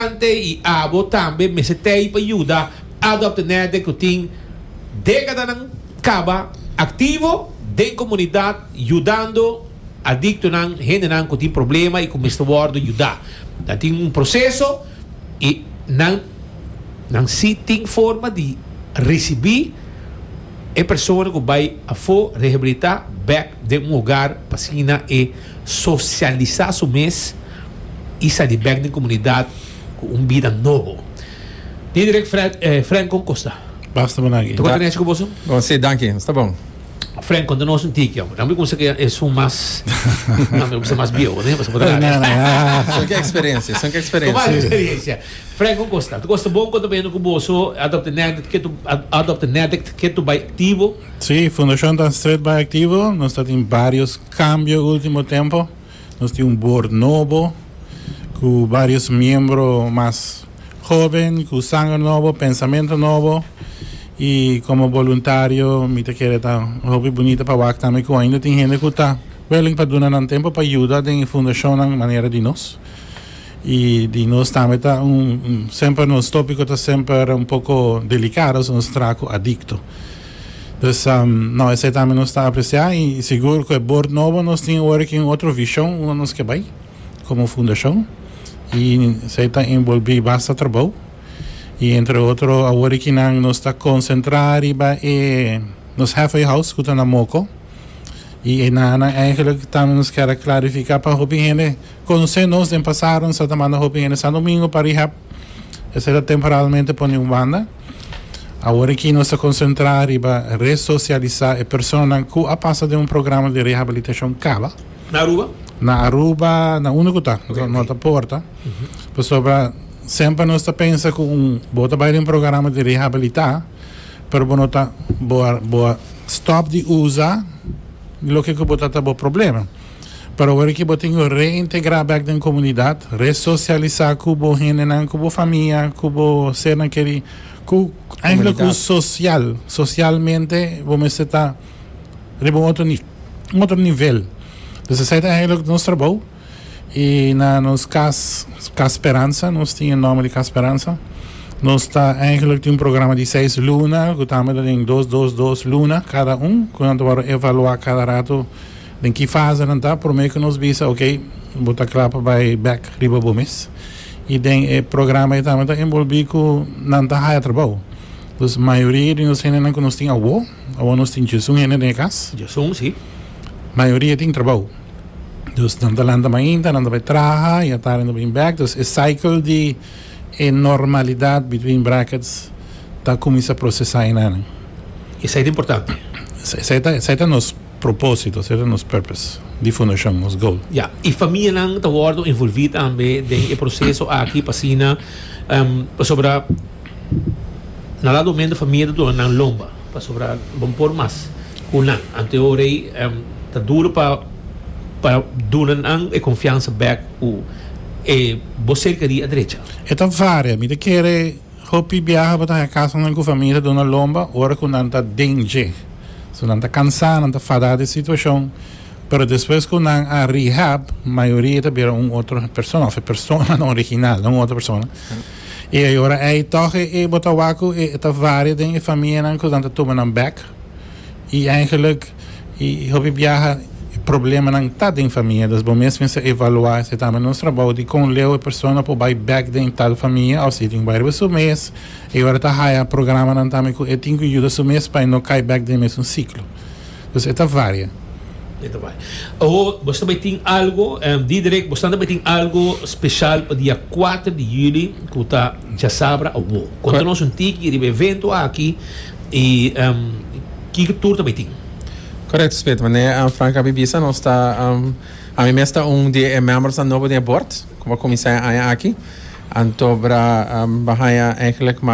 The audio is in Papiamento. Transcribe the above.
Ante y abo tambe mester tei pa yuda Adop Tenede cu tin decadanan caba activo den comunidad yudando adictonan, hendenan cu tin problema y cu mester wordo yuda. Ta tin un proceso y nan nan si tin forma di ricibi e persona cu bay afo rehabilita bek den un hogar pa asina e. Sosialisá su mes i sa di bèk den komunidat ku un bida nobo. Dia dirèk, Fred, eh, Fren kon kos ta? Basta bo naki. Ta konta nechi ku boso? Bo si, danki. Sta bon. Fren, konta nos un tiki, amo. Nan bo kuminsá ku e esun mas, nan bo kuminsá mas bieu, ne? Pasobra bo ta haña. Nada, ah. Son ke eksperensia, son ke Kobal eksperensia. eksperensia. Fren, kon kos ta? Ta kos ta bon kon ta bañando ku boso Adopt a Nèdèkt ke tu, a, Adopt a Nèdèkt ke tu bai aktivo? Si, Fundashon Danstret bai aktivo. Nos ta tin barios. Cambio ultimo tempo nos tin un board nobo cu varios miembro mas joven cu sanger nobo, pensamento nobo y como boluntario mi ta kere ta hopi bunita pa wak tambe cu ainda tin hende cu ta willing pa duna nan tempo pa yuda den e fundacionnan manera di nos y di nos tambe ta un semper nos topico ta semper un poco delicado nos tra cu adicto. Dus no esei tambe nos ta apresiá i sigur ku e bord nobo nos tin awor aki un otro vishon unda nos ke bai komo fundashon i esei ta enbolbí basta trabou i entre otro awor aki nan nos ta konsentrá riba e nos halfway house ku ta na Moko i e nanan eigenlik tambe nos kier a klarifiká pa hopi hende konsé nos den pasado nos a ta manda hopi hende Sandomingo pa rehab esei ta temporalmente pone un banda. Awor aki nos ta konsentrá riba resosialisá e personanan ku a pasa den un programa di rehabilitashon kaba. Na Aruba? Na Aruba, na unda ku ta, no ta porta. Pasobra semper nos ta pensa ku un bo ta bai den un programa di rehabilitá, pero bo no ta bo a bo a stòp di usa loke ku bo ta ta bo problema. Pero awor ki bo tin ku reintegrá bèk den komunidat, resosialisá ku bo hendenan, ku bo famia, ku bo sernan kerí, ku eigenlijk ku sosial, sosialmente bo mester ta riba un otro un otro nivel. Dus esei ta eigenlijk nos trabou i na nos kas Kas Speransa, nos tin e nòmber di Kas Speransa. Nos ta eigenlijk tin un programa di seis luna ku ta hambia ta den dos dos dos luna kada un ku nan ta wòrdu evaluá kada ratu. Den ki fasenan ta promé ku nos bisa, ok, bo ta kla pa bai bèk riba bo mes? I den e programa ei tambe ta enbolbí ku nan ta haya trabou. Dus mayoria di nos hendenan ku nos tin awó, awor nos tin djesun hende den e kas. Djesun, sí. Mayoria tin trabou. Dus nan ta lanta mainta, nan ta bai traha i atardi nan ta bin bèk. Dus e cycle di e normalidat, between brackets, ta kuminsá prosesá inane. Esei ta importante. Esei ta, esei ta nos. Propósito, sera nos purpose, di fundashon, nos goal. Ya, i famianan ta wòrdu envolví tambe den e proseso aki p'asina pasobra na lado mende famia ta duna nan lomba pasobra bon por mas ku nan. Anto ora ei ta duru pa pa duna nan e konfiansa bèk ku e bo serka di a drecha. E ta varia. Mi ta kere. Hopi biaha bo ta haña kasanan ku famia ta duna lomba ora ku nan ta den dje. So nan ta kansá, nan ta fadá di e situashon, pero despues ku nan a rehab, mayoria ta bira un otro persona òf e personanan original, no un otro persona. I ayora ei tòg e bo ta wak ku e ta varia den e famianan ku nan ta tuma nan bèk. y eigenlijk y hopi biaha e problemanan ta den famia dus bo mes mester evalua esa tambe nos trabou di con leu e persona por bay back den tal famia of si e tin bay riba su mes e ora ta haya programanan tambe cu e tin cu yuda su mes pa e no cay back den mesun ciclo dus e ta varia. E ta varia. Awor bo sta bay tin algo em Diederik bosta tabay tin algo special pa dia cuater di juli cu ta djasabra awor conta nos un tiki riba e evento aki. Y kiko tur ta bay tin. Correcto Smith, manera e an Frank a bibí sa nos ta ami mes ta un di e membersnan nobo den e bord cu a cuminsa e aña aki. Anto bra ban haya eigenlijk mas.